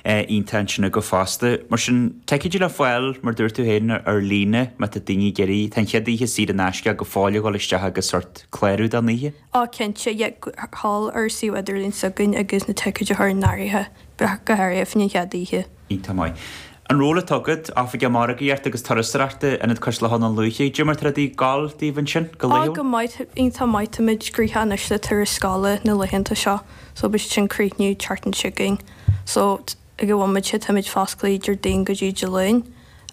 a intinne go fosta. Mar sin, ticéid le fáil, mar a dúirt tú féin, ar líne, má tá daoine ag iarraidh, tá an chéad oíche saor in aisce go fóill ag dul isteach agus sórt clárú don oíche. Ó, cinnte, yeah, thall ar suíomh idirlín s'againn agus na ticéid a chur in áirithe, bheadh go háirithe, faoin chéad oíche. Iontach maith. An ról atá agat, oifigeach margaíochta agus turasóireachta, in Ionad Cois Locha Dhún Lúiche, cad é mar tá rudaí ag gabháil daoibh ansin, go laethúil? Ó, go maith, iontach maith, táimid gnoitheach anois le turais scoile na laethanta seo, so beidh sin críochnaithe an tseachtain seo chugainn. So, ag an bhomaite táimid fosclaithe Déardaoin go dtí Dé Luain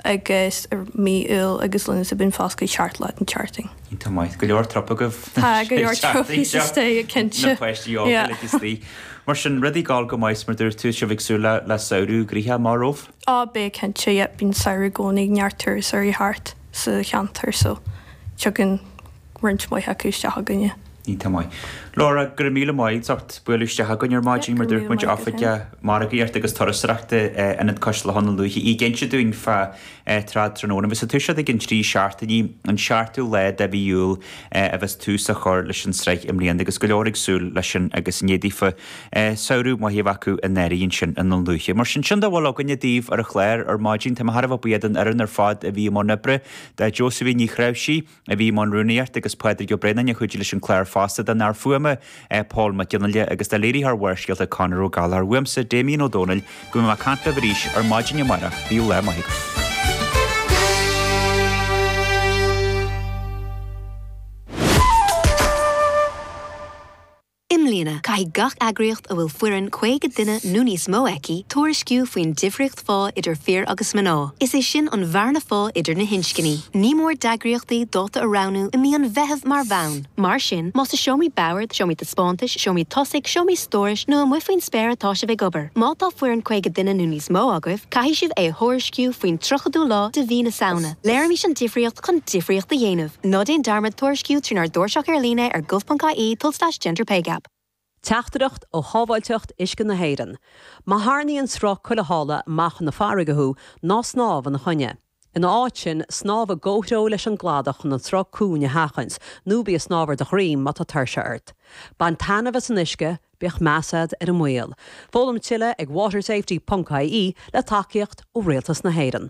agus ar mí Iúil agus Lúnasa bíonn fosclaithe seacht lá den tseachtain. Tá maith go leor trup agaibh. Tá go leor trupaí sa stage cinnte. Na páistí óga le slí. Mar sin rudaí ag gabháil go maith is mar dúirt tú sibh ag súil le samhradh gnoitheach amach romhaibh? Á, beidh cinnte, yep, bíonn samhradh i gcónaí neart turasóirí thart sa cheantar so tigeann. roinnt mhaith acu isteach chugainne. Iontach maith. Laura, go raibh míle maith agat as bualadh isteach chugainn ar maidin. Yep, go raibh míle maith agat fhéin. Mar a dúirt muid, oifigeach margaíochta agus turasóireachta in Ionad Cois Locha Dhún Lúiche ag inse dúinn fá Trad Tráthnóna a bheas ag toiseacht i gceann trí seachtainí, an seachtú lá de mhí Iúil a bheas tús á chur leis an sraith i mbliana agus go leor ag súil leis sin agus ní fhéadfaí samhradh maith a bheith acu in Éirinn ansin i nDún Lúiche. Mar sin, sin a bhfuil againne daoibh ar an chlár ar maidin. Táim thar a bheith buíoch den fhoireann ar fad a bhí i mbun oibre, do Josephine Ní Threabhsígh, a bhí i mbun rúnaíochta agus Pádraig Ó Braonáin a chuidigh leis an gclár fosta. Don fhear fuaime Pól Mac Fhionnghaile agus do léiritheoir Bharrscéalta Conor Ó Gallchóir, uaimse Damien Ó Dónaill, go mbeidh mé ag caint libh arís ar maidin amárach. Bíodh lá maith agaibh. I mbliana, caithfidh gach eagraíocht a bhfuil foireann 50 duine nó níos mó aici tuairisciú faoin difríocht phá idir fir agus mná, is é sin an bhearna phá idir na hinscní. Ní mór d'eagraíochtaí dáta a roghnú i mí an Mheithimh mar bhonn. Mar sin, más i seomraí boird, seomraí taispeántais, seomraí tosaigh, seomraí stórais nó amuigh faoin spéir atá sibh ag obair, má tá foireann 50 duine nó níos mó agaibh, caithfidh sibh é a thuairisciú faoin 30ú lá de mhí na Samhna. Léirímis an difríocht chun difríocht a dhéanamh. Ná déan dearmad tuairisciú trínár dtairseach ar líne ar gov.ie tulslais gender pay gap. Teachtaireacht ó Shábháilteacht Uisce na hÉireann, Má tharraingíonn sruth cuilitheála amach chun na farraige thú, ná snámh ina choinne. Ina áit sin, snámh i gcomhthreo leis an gcladach chun an sruth cúng a sheachaint, nó bí ag snámh ar do dhroim má tá tuirse ort. Bain taitneamh as an uisce, bíodh meas agat ar an mbaol. Foghlaim tuilleadh ag watersafety.ie le tacaíocht ó Rialtas na hÉireann.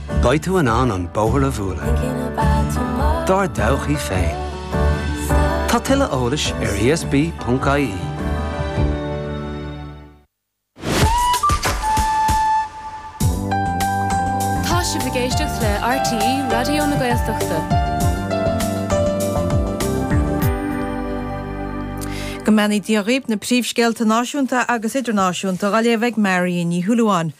Beidh tú in ann bóthar a bhualadh dár dtodhchaí féin. Tá tuilleadh eolais ar ESB.ie. Tá sibh ag éisteacht le RTÉ Raidió na Gaeltachta. Go mbeannaí Dia dhaoib na príomhscéalta náisiúnta agus idirnáisiúnta dá léamh ag Máirín Ní Shúilleabháin.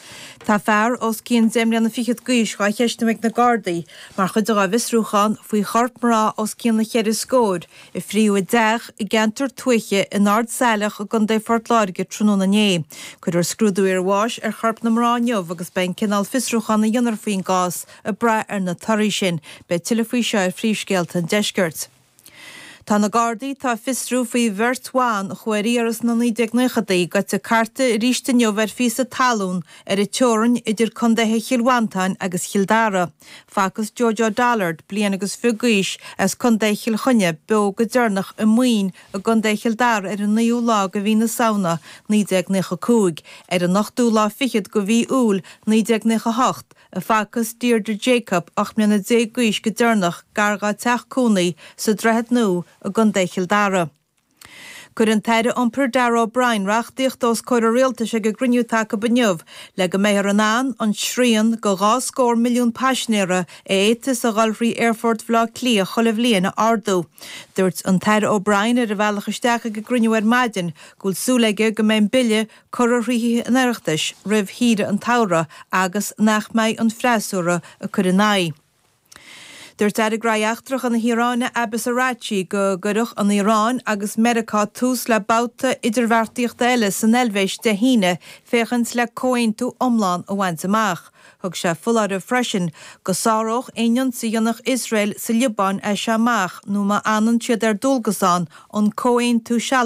Tá fear os cionn deich mbliana fichead d'aois dhá cheistiú ag na Gardaí mar chuid dá bhfiosrúchán faoi chorp mná os cionn na ceithre scóir a frítheadh i dteach i gceantar tuaithe in Ard Salach i gContae Phort Láirge tráthnóna inné. Cuirfear scrúdú iar bháis ar chorp na mná inniu agus beidh an cineál fiosrúchán a dhéanfar faoin gcás ag brath ar na torthaí sin. Beidh tuilleadh faoi seo ar Phríomhscéalta an Deiscirt. Tá na Gardaí atá ag fiosrú faoi bheirt bhan a chuaigh ar iarraidh sna 1990idí gaibhte ag cartadh arís inniu ar phíosa talún ar an teorainn idir Condaetha Chill Mhantáin agus Chill Dara. Facthas Jojo Dullard, bliain agus fiche d'aois, as Condae Chill Chainnigh, beo go deireanach i Maoin i gCondae Chill Dara ar an 9ú lá go mhí na Samhna, 1995. Ar an 8ú lá fichead go mhí Iúil, 1998, a facthas Deirdre Jacob 18 mbliana d'aois go deireanach gar dá teach cónaí sa Droichead Nua i gcontae Chill Dara. Chuir an tAire Iompair Darragh O'Brien reachtaíocht os comhair an Rialtais ag a gcruinniú tacaibh inniu le go mbeifear in ann an srian de dhá scór milliún paisinéara a fhéadfas a dhul thrí Aerfort Bhaile Átha Cliath chuile bhliain a ardú. Dúirt an tAire O'Brien ar a bhealach isteach ag an gcruinniú ar maidin go bhfuil súil aige go mbeidh an Bille curtha thrí Thithe an Oireachtais roimh shaoire an tsamhraidh agus nach mbeidh an freasúra ag cur ina aghaidh. Dúirt Aire Gnóthaí Eachtracha na hIaráine Abbas Araghchi go gcuirfeadh an Iaráin agus Meiriceá tús le babhta idirbheartaíochta eile san Eilvéis Dé hAoine féachaint le comhaontú iomlán a bhaint amach. Thug sé foláireamh freisin go sáródh aon ionsaí a dhéanfadh Iosrael sa Liobáin as seo amach nó má fhanann siad ar dualgas ann an comhaontú sealadach